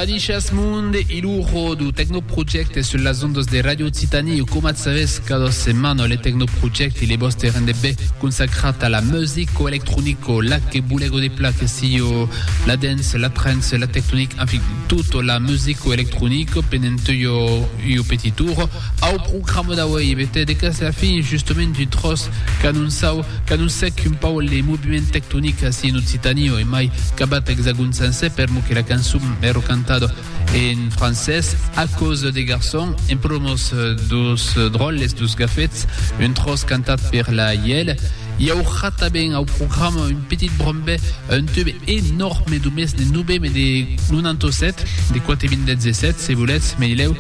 Adishas monde i lujo du Tecnoproject sul las ondas de Radio Occitanie o comat savés cada setmana le Tecnoproject i le vostre rendebé consacrat a la music o electronic o la que bulego de pla que si o la dance, la trance, la tectonic, en fin, tutto la music o electronic penent io, io petit tour au programa d'auei e bete de cas la fin justament du tros Qu'anoncau, qu'anoncèc un pauc le moviment tectonic ací en Occitània, e mai qu'abat Exagòn sencer, per mò que la cançon ère cantada en francés, a causa de garçon, en promòs dos dròlles, dos gafets, un tròç cantat per la Ièl, i aurà tanben au programa un petit brombè, un tube enòrme de mès de 9 mai de 97, de quate minlets e 7, se volètz, me dilèu,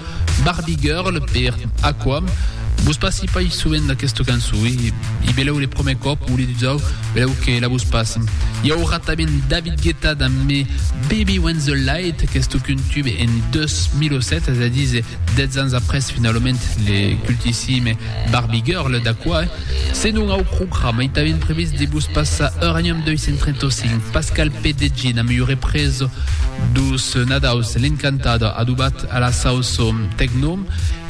Barbie Girl per Aqua. Vos passi pas sovent d'aquesta cançon e i belèu le promè còp o le dusau, belèu que la vos passi. I aurà tanben David Guetta damb Me Baby When The Light, qu'estó qu'un tube en 2007, es a díser 10 ans après finalament le cultissime Barbie Girl d'Aqua. Se non au programa i tanben previst de vos passar Uranium 235, Pascal Pedegin amb ua represa dos Nadaus, L'Encantador adobat a la sauço tecno.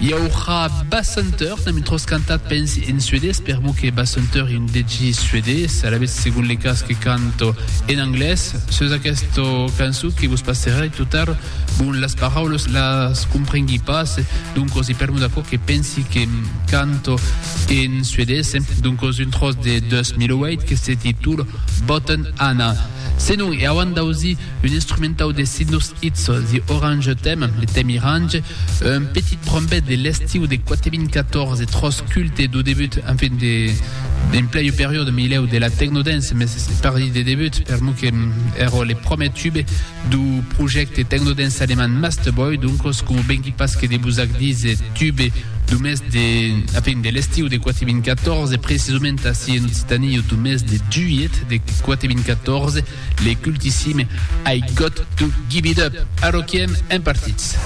I aurà Basshunter, n'am intros cantat pensi en suedés, per mo que Basshunter en degi suedés, alavetz segon le cas que canto en anglés. Sus aquesta cançó que vos passerai tot ar, bon, las paraulas las comprengui pas, doncos i per mo d'aquò que pensi que canto, En suedés, doncos un tròç de 2008 que se titula Botten Anna. Senon, e auant d'ausir un instrumentau de Sidnus Itz, The Orange Theme, le tèm irange, un petit brombet de l'estiu de 4014, tròç culte dau debut, enfin, de, en plei periòde milèu de la technodance, mès pardi de debut, per mo que èra le pròmer tube, Do projècte Tecnodance alemand Masterboy, doncos, coma vengui pas que de vos ac díser, tube do mes de, a fin, de l'estiu de 4.014, precisament ací en Occitanie au mes de juilhet de 4.014, le cultissime I Got To Give It Up! Arroquiem en partits.